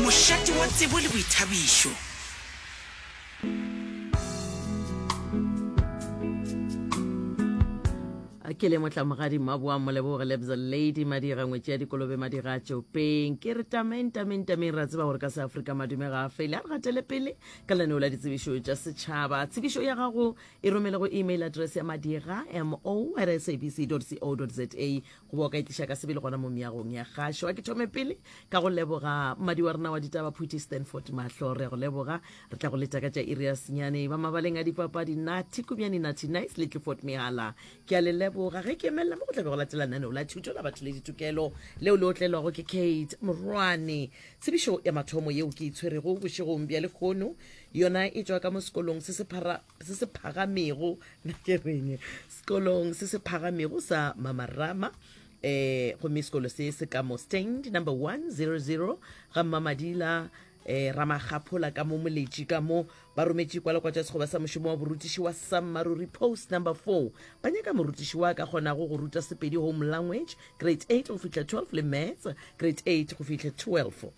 Mošate wa tsebo le boithabišo. ke le motlamogadi mmaboa moleboge lebza lady madira ngwetši ya dikolobe madira a tšopeng ke re tameng tameng tameng ra tseba gore ka seafrika madume ga a fele a re gatele pele ka laneo la ditsebišo tša setšhaba tsebišo ya gago e romele go email address ya madira mo at sabc co za go ba o ka e tliša ka sebele gona mo meagong ya gašo a ke thome pele ka go leboga mmadi wa rena wa ditaba phuti stanford mahlo re ya go leboga re tla go leta ka tša iri ya senyane ba mabaleng a dipapadi nathi kumyane nathi nice le tlefort mehala ke a le leboga ge ke emelela mo go tlabe go latela naneo la thuto la batho le ditokelo leo le otlelwago ke kate morwane tsebišo ya mathomo yeo ke itshwerego bošegong bja lekgono yona e tšwa ka mo sekolong se se phara se se phagamego na ke reng sekolong se se phagamego sa mamarama eh gomme sekolo se se ka mo stand number 100 ga mmamadila eh ramakgaphola ka mo moletši ka mo ba rometše kwalakwa tša sekgoba sa mošomo wa borutiši wa sammaruri post number 4 ba nyaka morutiši wa ka kgonago go ruta sepedi home language grade 8 go fihla 12 le maths grade 8 go fihla 12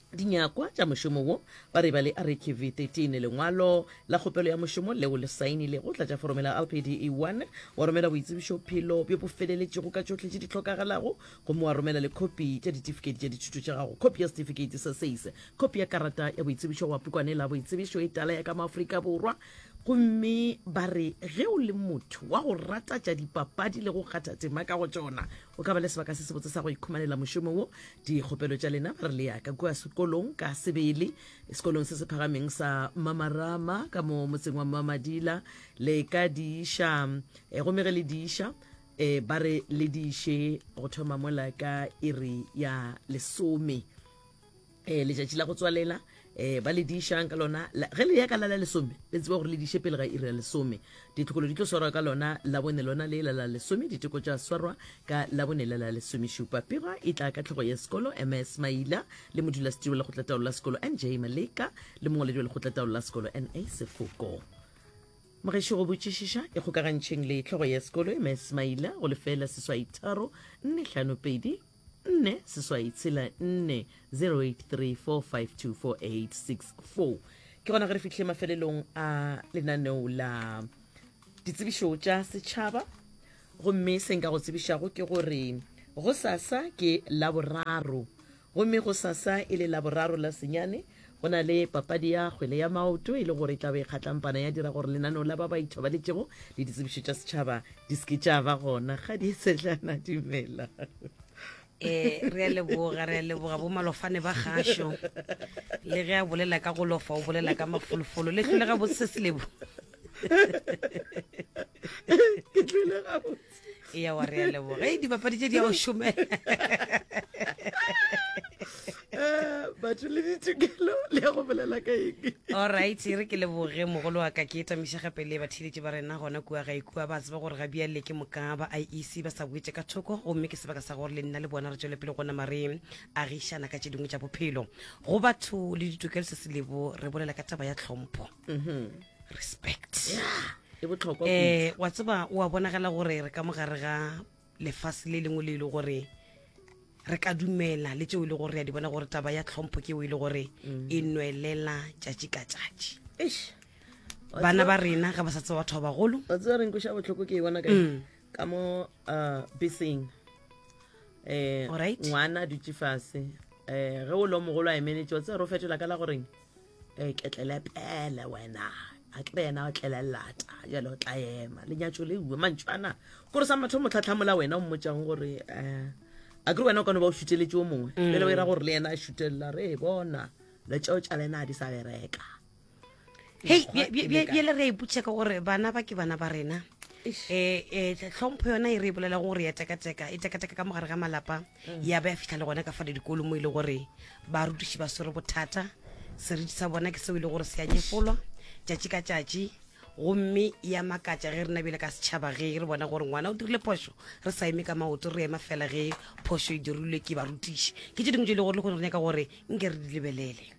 Dinyakwa tša mošomo wo, ba re ba le Ariki V13, lengwalo la kgopelo ya mošomo leo le saenilego, tlatša foromo la LPDE 1, wa romela boitsebišo phelo bjo bo feleletšego ka tšohle tše di hlokagalago, gomme wa romela le khopi tša ditifiketi tša dithuto tša gago, khopi ya setifikeiti sa SACE, khopi ya karata ya boitsebišo goba pukwane la boitsebišo e tala ya ka mo Afrika Borwa, Gomme ba re ge o le motho wa go rata tša dipapadi le go kgatha tema ka go tšona, o ka ba le sebaka se sebotse sa go ikhumanela mošomo wo. Dikgopelo tša lena, ba re le ya ka kua sekolong ka sebele, sekolong se se phagameng sa Mamarama ka mo motseng wa Mamadila, le ka di iša. E, gomme ge le di iša, e, ba re le di iše go thoma mola ka iri ya lesome. um letšatši la go tswalela um ba le dišang ka lona ge le ya ka la la lesome le tseba gore le diše pele ga iri ya lesome ditlhokolo di tlo swarwa ka lona labone lona le la la lesome diteko tša swarwa ka labone la la lesomešupa pega e tla ka tlhogo ya sekolo ms maila le modulasetiri wa lekgotlataolo la sekolo nj maleka le mongwaledi wa lekgotlataolo la sekolo na sefoko mogeši go botšišiša e kgokagantšheng le tlhogo ya sekolo ms maila go lefela seswaitharo nne hlano pedi nne seswai tshela nne 0834524864 ke gona ge re fihle mafelelong a lenaneo la ditsebišo tša setšhaba gomme se nka go tsebišago ke gore go sasa ke laboraro gomme go sasa e le laboraro la senyane Go na le papadi ya kgwele ya maoto e le gore e tla be e kgatlampana ya dira gore lenaneo la ba ba ithobaletšego le ditsebišo tša setšhaba di seke tša ba gona ga di setlana dumela um re a leboga re a leboga bo malofane ba gašo le ge a bolela ka go lofa o bolela ka mafolofolo le tlholega bo se selebo e ya wa re ya leboga e dibapadi tše di ya go šomela Eh, batho le ditokelo le ya go bolela ka eng alright e re ke leboge mogolo wa ka ke etamiša gape le batheeletši ba rena gona kua ga ikua ba tseba gore ga bjale ke moka ba iec ba sa boetse ka thoko gomme ke sebaka sa gore le nna le bona re tšwele pele go nama re agišana ka tše dingwe tša bophelo go batho le ditokelo se se lebo re bolela ka taba ya tlhompho respect e botlhokwa eh wa tseba o a bonagala gore re ka mogare ga lefase le lengwe le ile e gore re ka dumela le tseo e le gore re a di bona gore taba ya tlhompho ke eo e le gore mm. e nwelela tšatši ka tšatši bana ba rena ga ba sa tseba batho ba bagolo o tseba reng koša botlhoko ke e bona ka mm. ka mo uh, beseng um ngwana a dutse fase um ge o le mogolo a emeletše o tsere o fetola ka la goreng e eh, ketlelepele wena a ke re yena o tlelelata jale o tla ema lenyatso le uwe mantšwana kore sa matho motlhatlhamola wena o mmotsang gore um eh, a ke re wena o kane ba o šuteletse o mongwe mm. jale o ira gore le yena a šutelela re e bona le tseo tša lena a di sa bereka hei bjele re iputša ka gore bana ba ke bana ba rena um tlhompho yona e re e bolelang gore ya tekateka e tekateka ka mogare ga malapa ya ba ya fitlha le gona ka fale dikolo mo e le gore barutiši ba swere bothata seriti sa bona ke seo e le gore se a nyefolwa tšatši ka tšatši gomme ya makatša ge re nabile ka setšhaba ge re bona gore ngwana o dirile phošo re sa eme ka maoto re ema fela ge phošo e dirilwe ke barutiši ke tše dingwe tse e le gore le kgone re nyaka gore nke re di lebelele